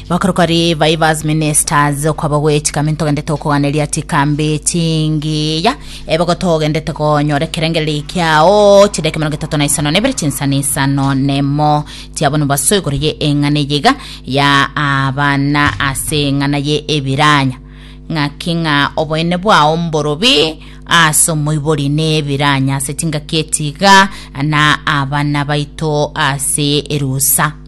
bakorokori baibas ministers okwaba gwe chikami ntogende tokoganeria chikambi chingiya ebogo togendete konyora ekerengereri ekiao chire ekemero getato na isano nebere chinsana isano nemo chiabonu baso igoro ye eng'ana eyiga ya abana ase eng'ana ye ebiranya ng'aki ng'a oboene bwao mborobi ase omoibori nebiranya ase chingaki echiga na abana baito ase erusa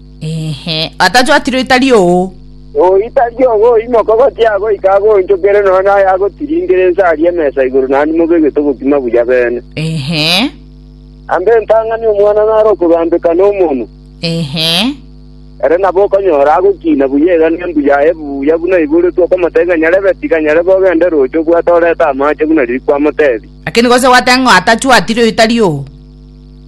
Ehe, atachwatire oitari oo. Oitari obo oimoke gochia goika agoonchokere nonya naye agotiringere inse aria emesa igoro naende mobegete obokima buya beene. Ehe, Amba entang'ani omwana nare okogambeka nomonwa, ehe, ere nabo okonyora agokiina buya iga nembu yaye buya buna eiboretwe okomotebia ng'a nyarebe tiga nyarebe ogende roche obwate orete amache buna riria kwamoteebia. lakini gose gwateba ng'a atachwatire oitari oo.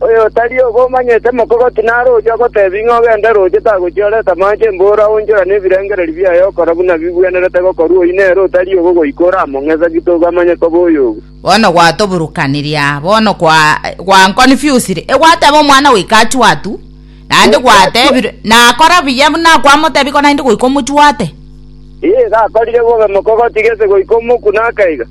“Oyotari obomanyete mokogoti naro oyio agotebi ng'a ogende roche tagochia oreta amache emboro aonchorane ebirengererio biaye okora buna bigwenerete gokorwa oyio nere otari obo goika oramong'e sagete obo amanye koba oyogu. Bono gwatoburukanirie aa, bono gwankonfiusire, egwateba omwana goika achue atu, naende gwatebire, nakora buya buna kwamotebia ko naende goika omochuate. Ee, gakorire bobe mokogoti gese goika omokune akaiga.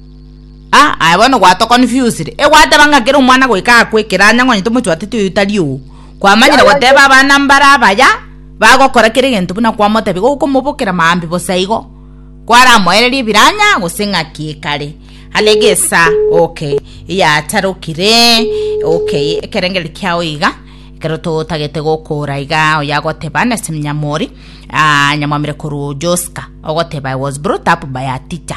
Aa, aye bono gwatoconfusire. Egwateba ng'a kera omwana goika akwe ekero anyang'onyete omochwatete oyo tari oo. Kwamanyire goteba abana mbare abaya bagokora kera egento buna kwamotebia, gokomobokera maambia bosa igo, kwaramoereria ebiranya gose ng'aki ekare. Ande egesa, okay, eyacharokire, okay, ekerengeri kiao iga, ekero totagete gokora iga, oyo agoteba nase Nyamori, ah, nyamwamire korwa Joska, ogoteba I was brought up by a teacher.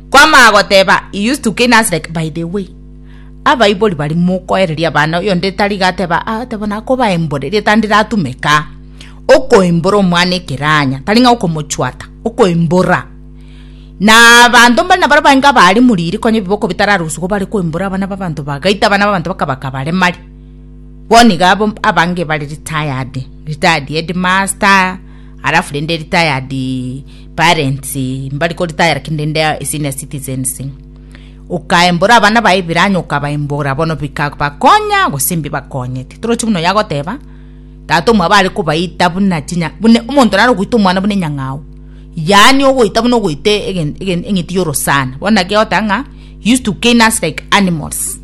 Kwamanya goteba he used to cane us like by the way. Abaibori bari mokoereria abana oyonde tari gateba ah tebo nakoba embore rieta ndiratome ka. Okoembora omwana ekeranya tari ng'a okomochwata okoembora na abanto mbari nabaro bainga bari muriri konya ebiboko bitararusugo bare koembora abana babanto bagaita abana babanto bakabakabaremari bono iga abange bare retired retired headmaster Alafu rende retired parents mbari ko retire lakini rende a senior citizens ukaembora abana baye biranya ukabaembora bono bikabakonya gose mbibakonyete torochi buna oyo agoteba tata omwabo are kobaita buna chinya buna omonto naro ogoita omwana buna enyang'au yaani ogoita buna ogoita egen egen eng'iti ya orosana bono naki egoteba ng'a used to cane us like animals.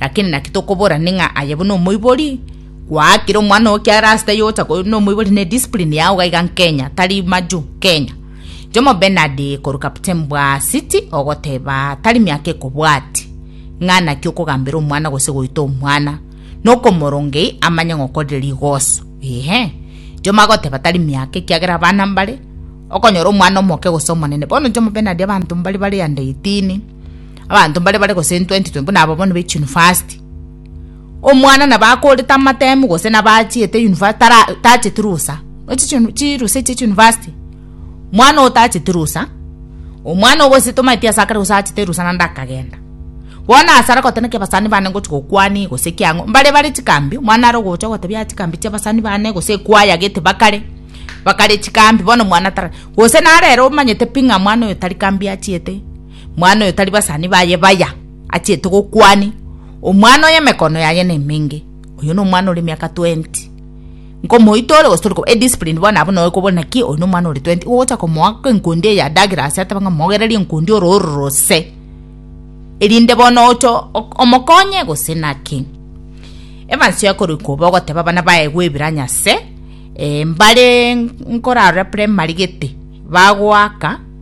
Lakini naki tokobora ning'a aye buna omoibori? Gwaakire omwana oo kiara ase taiyo ogocha korwa nomoibori ne discipline yao iga iga Nkenya, tari majuu, Kenya. Jomo Bernard korwa captain bwa City ogoteba tari miaka ekobwati ng'a naki okogambera omwana gose goita omwana nokomorongei amanye ng'a okorire rigoso. Ehe. Jomo agoteba tari miaka ekiagera abana mbare okonyora omwana omoke gose omonene. Bono Jomo Bernard abanto mbari bare under 18. Abanto mbare bare gose 2020 buna aba bono baichia university. Omwana nabo akorete amatemu gose nabo achiete university tara tacheti rusa. Ochi chi chirusa echi university. Mwana otacheti rusa. Omwana ogose tomaeti asakare gose achete rusa nanda akagenda. Bona asara kotene ke basani bane ngochi gokwani gose kiango. Mbare bare chikambi mwana aro gocha gotebia chikambi chia basani bane gose kwaya gete bakare. Bakare chikambi bono mwana tara. Gose narero omanyete ping'a mwana oyo tari kambi achiete. Mwana oyo tari basani baye baya achiete gokwani omwana oye emekono yaye nemenge oyo nomwana ore miaka 20 nkomoita ore gose e discipline bono abwo nawe kobona ki oyo nomwana ore 20 ogocha komoa enkundi eya dagera ase ateba ng'a mogererie enkundi ore ororose erinde bono oche omokonye gose naki Evans yakorwa koba ogoteba bana baye gwebiranya ase mbare nkorarora primary gete bagoaka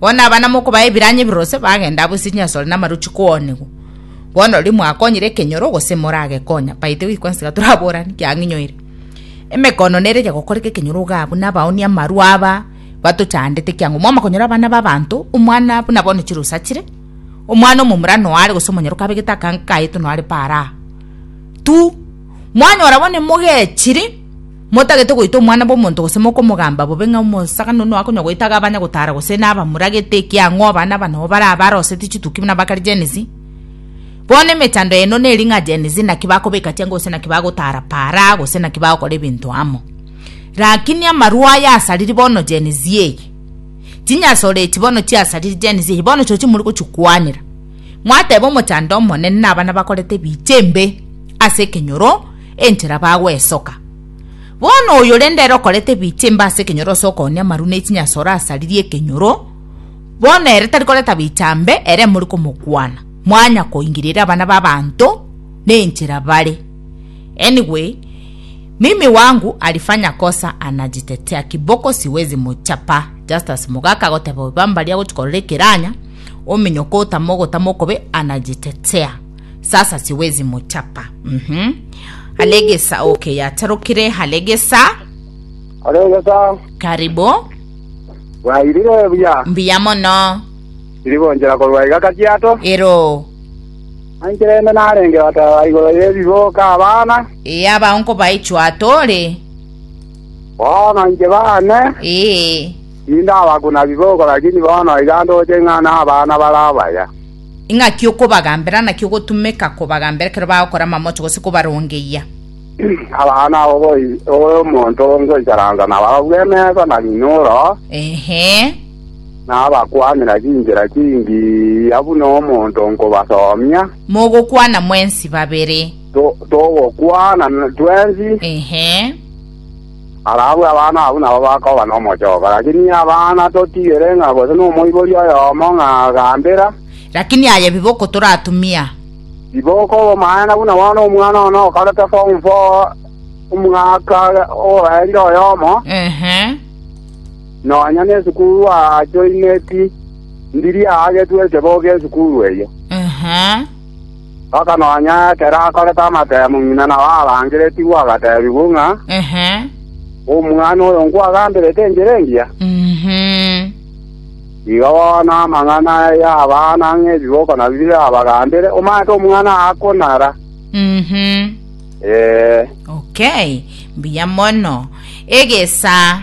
Bono abana mokobaa ebiranyi ebirose bagenda abo ase chinyasore na amarochi koonigwa. Bono riria mwakonyire ekenyoro gose moragekonya, baite goika gwensi tiga toraborane, kiang'inyoire. Emekono nere eria gokoreka ekenyoro iga abwo nabaoni amarwa aba batochandete ekiagera mwaoma konyora abana b'abanto, omwana buna bono chirusa chire, omwana omomura noare gose omonyoroka abegete akanka kayeto noare paara aa. Tu! Mwanyora bone mogechiri, motagete goita omwana bw'omonto gose mokomogamba bobe ng'a omosakani one oakonya goita iga abanye gotaara gose nabamuragete ekiang'u abana aba nabo bare abaroosete chituki buna bakare Gen Z. Bono emechando yaino neri ng'a Gen Z naki bakobeka chianga gose naki bagotaara para gose naki bagokora ebinto amo. Rakini amarwa aya asariri bono Gen Z eye. Chinyasore echi bono chiasariri Gen Z eye bono chirochio morigochikwanera. mwateba omochando omonene nabana bakorete ebiche embe ase ekenyoro enchera bagwesoka. Bono oyo rende ere okorete ebiche embe ase ekenyoro ase okoonia amaru ne chinyasoro asaririe ekenyoro, bono ere tari koreta bicha mbe, ere mori komokwana, mwanya koingiriria abana b'abanto nenchera bare. Anyway, mimi wangu alifanya kosa anajitetea kiboko siwezi muchapa just as mugaka agoteba oyo bambaria agochikorera ekiranya ominyoke otama ogotama okobe anajitetea sasa siwezi muchapa mhm alegesa okay yatarukire halegesa oregesa karibu bwairire buya mbiya mono iri gonchera korwa iga kajiato ero anchera ende narenge bataba igoro yebiboka abana ee abaonko baichwa atore bono nche bane ee Ninda abakuna biboko, lakini bono iga ndoche ng'a nabana bare abaya. Ing'aki okobagambera, naki ogotumeka kobagambera ekero bagokora amamocho gose kobarongeyia? Abana abo boigo omonto ngoicharansa nabarabwo emesa na rinoro, Ehe. na abakwanera chinchera chingiya buna omonto nkobasomia. Mogokwana mwensi babere. To- togokwana twensi. Ehe. Barabwo abana abwo nabo bakoba nomochoko, lakini abana totigere ng'a gose nomoibori oyomo ng'a gambera. Lakini aye biboko toratumia. Riboko obomaene buna bono omwana one okorete form four omwaka oraire oyomo, nonya nesukuru ajoineti, ndiri aagetwe esebogo esukuru eyio. Mpaka nonya ekero akorete amatemo ng'ina nao arangeretigwe agateebigwa ng'a, Omwana oyo nkwagamberete enchera engiya? Iga bono amang'ana aye abana ng'a ebiboko nabio birabagambere, Omanyete omwana akonara. Mbuya mono. Egesa.